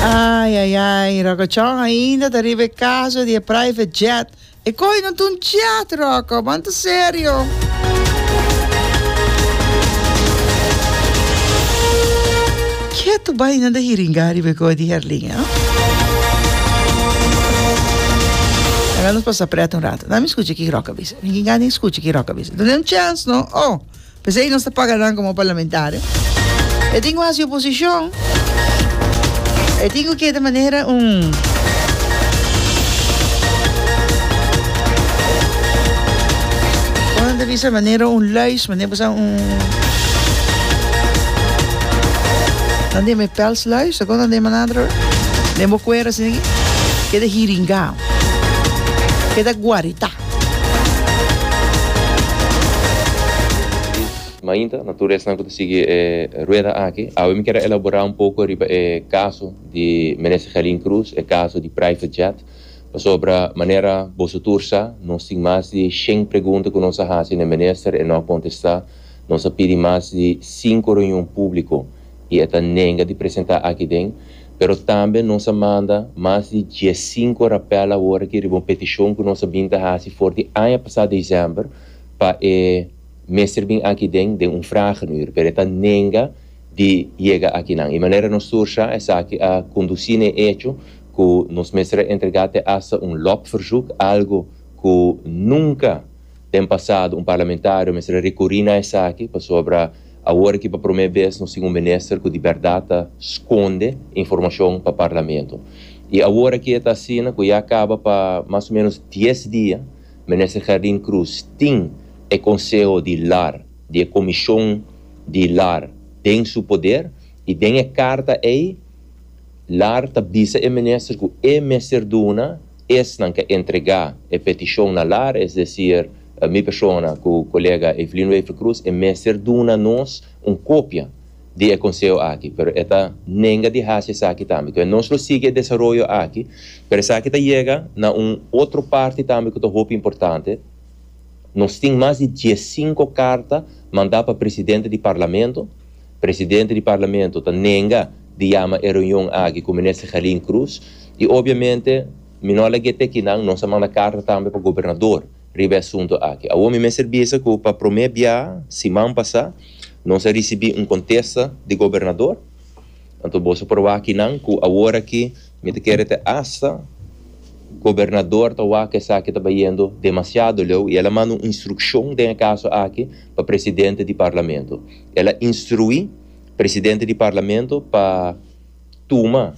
Ai ai ai, Rokochon ainda ta riba e kaso di e private jet. E koi no ta un jet, Roko, man ta serio. Ketu bai nan ta hiringá riba e koi di Herlin, eh. Laga nos pasa prèt un ratu. Dami skucha ki Ròk a bisa. Ringingá ding skucha ki Ròk a bisa. Dun'é un chèns, no. Oh! P'esei nos ta paga nan komo parlamentario. E tin ku hasi oposishon, e tin ku keda manera un. bisa manera un luis, manera bisa un... Dan de me pels luis, o dan de manadro, de mo cuera, sin que de hiringa, que da guarita. Luis, Mainta, na tur esnan ku ta sigui e rueda aki, awe mi kere elaborá un poko riba e kaso di Minister Gelin Cruz, e kaso di private jet, pasobra manera boso tur sa, nos tin mas di shen pregunta ku nos a hasi na e Minister, e no a kontestá. Nos a pidi mas di sinku reunion públiko i e ta nenga di presentá akiden. Pero tambe nos a manda mas di dies sinku rapel awor aki riba un petishon ku nos a bin ta hasi for di aña pasá desèmber pa e mester bin aki den den un fragenür, pero e ta nenga di yega akinan. I manera nos sursa esaki a kondusí na e echo ku nos mester a entregá te asta un lobverzoek, algu ku nunka den pasado un parlamentario mester a rikurí na esaki pasobra Awor aki pa promé bes nos tin un minister cu di berdad ta sconde informacion pa Parlamento. Y awor aki e ta asina cu ya caba pa mas o menos dies dia Minister Gerdin Cruz tin e Conseho di Lar, di e Comision di Lar den su poder y den e carta ey Lar ta bisa e Minister cu e mester duna Esnan ke entrega e petishon na lar, es desir mi persona ku kolega Evelyn Wever Cruz, e mester duna nos un kopia di e konseho aki, pero e ta nenga di hasi esaki tambe. Enton nos lo sigui e desaroyo aki, pero esaki ta yega na un otro parti tambe ku ta hopi importante, nos tin mas di diesinko karta manda pa presidente di parlamento, Presidente di Parlamento ta nenga di yama e reunion aki ku Minister Gelin Cruz i obiamente mi no a lag'é te kinan, nos a manda karta tambe pa Gobernador riba e asuntu aki. Awor mi mester bisa ku pa promé bia siman pasá nos a risibí un kontesta di Gobernador. Anto boso por wak kinan ku awor aki mi ta kere te asta Gobernador ta wak ku esaki ta bayendo demasiado leu i el a manda un instrukshon den e kaso aki pa Presidente di Parlamento. El a instruí presidente di Parlamento pa tuma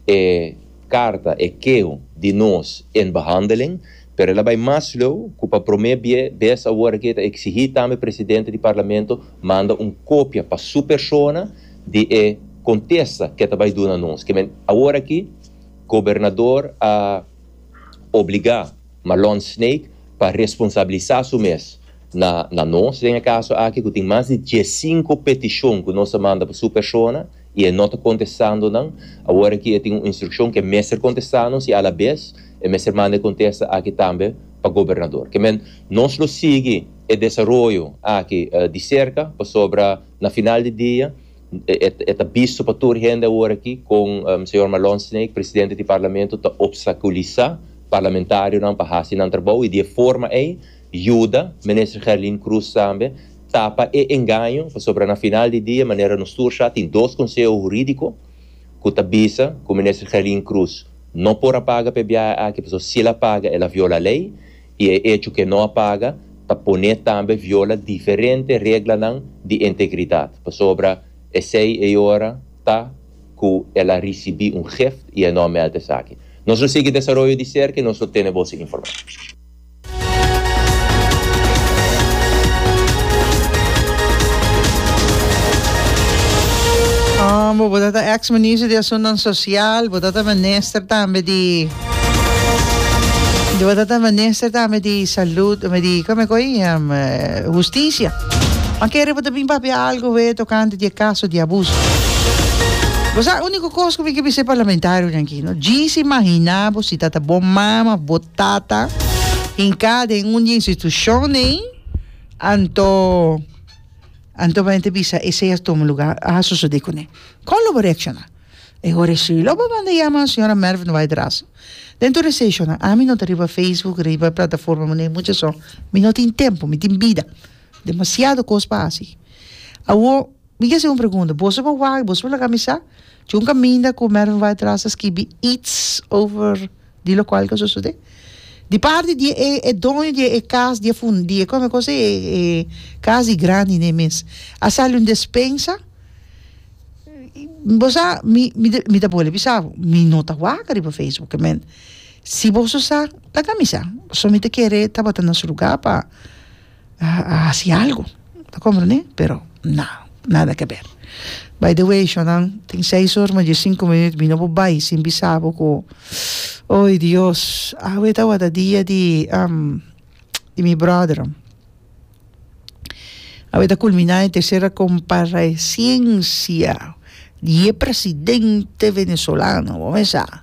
e karta, e keho di nos in behandeling, pero el a bai mas lou ku pa promé bes awor aki e ta eksigí tambe presidente di Parlamento manda un kopia pa su persona di e kontesta ku e ta bai duna nos. Kimin awor aki gobernador a obligá Marlon Snaek pa responsabilisá su mes. Na na nos den e kaso aki ku tin mas di dies sinku petishon ku nos a manda pa su persona i e no ta kontestando nan, awor aki e tin un instrukshon ku e mester kontestá nos i alabes e mester manda e kontesta aki tambe pa gobernador. Ke men, nos lo sigui e desaroyo aki di serka pasobra na final di dia e e ta bisto pa tur hende awor aki kon señor Marlon Snaake, presidente di Parlamento, ta opstakulisá parlamentarionan pa hasi nan trabou i di e forma ei Yuda Minister Gerlin Cruz tambe tapa e engaño pasobra na final di dia manera nos tur sa tin dos Conseho Huridico cu ta bisa cu Minister Gerlin Cruz no por a paga p'e biaha aki pasobra si el a paga el a viola ley y e hecho cu e no a paga ta pone tambe viola diferente reglanan di integridad pasobra esey e ora ta cu el a ricibi un gift y e no a meld esaki. Nos lo sigui desaroyo di cerca y nos lo tene boso informa. Bo tabata ex ministro di Asunnan Sosial, bo tabata minister tambe di bo tabata minister tambe di Salud, di kome ku ei um, Hustisia. Ma kere bo ta bin papia algu awe tokante di e kaso di abuso. Bo sa uniko kos ku mi ke bisa e parlamentarionan aki, no? Djis imaginá bo si tabata bo mama of bo Tata, hinká den un di e institushonnan, anto, anto bo mester bisa esei a tuma lugá, a sosodé kuné. Kon lo bo reakshoná? E hora shi lo bo manda yama señora Merf Ndubai Drasso. Den tur e seishonnan, ami no ta riba facebook, riba plataforma muné mucha so, mi no tin tempu, mi tin bida, demasiado kos pa hasi. Awor, mi ke hasi un pregunta, boso bo wak, boso bo laga mi sa? Djon kaminda ku Mervin bai tras a skibi its over di lokual ku a sosodé. Di parti di e e doño di e kas di e fun di e kon a kos e e kas di grandi nei mes. A sali un despensa bo sa mi mi ta mi ta bole bisa bo mi no ta wak riba facebook e men si boso sa ta kamisa so mi ta kere tabata nos luga pa a hasi algu ta komprende pero na nada ke ber by de way shonnan tin seis or mas dje sinku minut mi no por bai sin bisa bo ku oy Dios awe tawata dia di di mi brother awe ta kulminá e tercera komparesensia di e presidente venezolano bo me sa.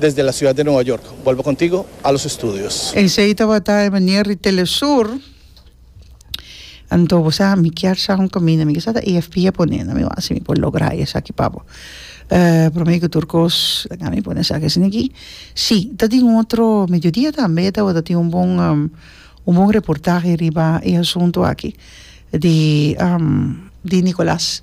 desde la ciudad de Nueva York. Bolbe contigo a los estudios. Esey tabata e manier di Telesur. Anto bo sa mi kier sa un caminda, mi kisa ta AFP a pone na mi wak si mi por logra esaki papo. Eh, prome ku tur kos laga mi pone esaki asina aki. Si, ta tin un otro mediodia tambe e tabata tin un bon un bon reportahe riba e asunto aki di di Nicolas.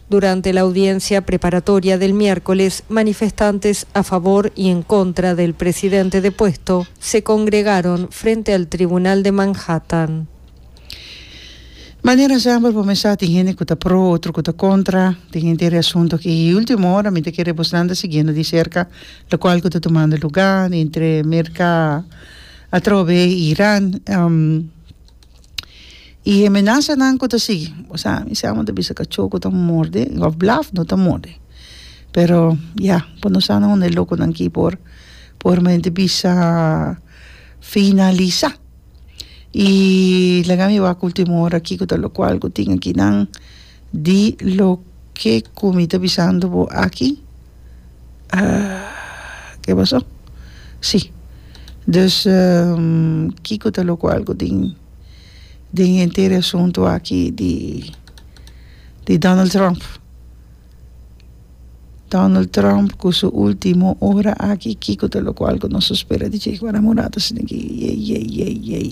Durante la audiencia preparatoria del miércoles, manifestantes a favor y en contra del presidente depuesto se congregaron frente al Tribunal de Manhattan. Manera semper bo mester tin hende cu ta pro y otro cu ta contra, tin hende tin reasunto aki y ultimo ora mi ta kere bosnan ta siguiendo di cerca locual cu ta tumando lugar entre Merca atrobe y Iran. y he menasanan cu ta sigui osea mi sa amo ta bisa cachó cu ta morde of blaf no ta morde pero ya por no sa unda e loconan aki por por mente bisa finalisa y laga mi wak ultimo ora aki cu ta locual cu tin aki nan Di loke ku mi ta bisando bo aki, ke pasó? Sí. Dus, kiko ta lo ku algu den den henter e asuntu aki di di Donald Trump? Donald Trump ku su ultimo ora aki, kiko ta lo ku algu nos ta spera di djei ku Anamorada si no ke yei yei yei yei.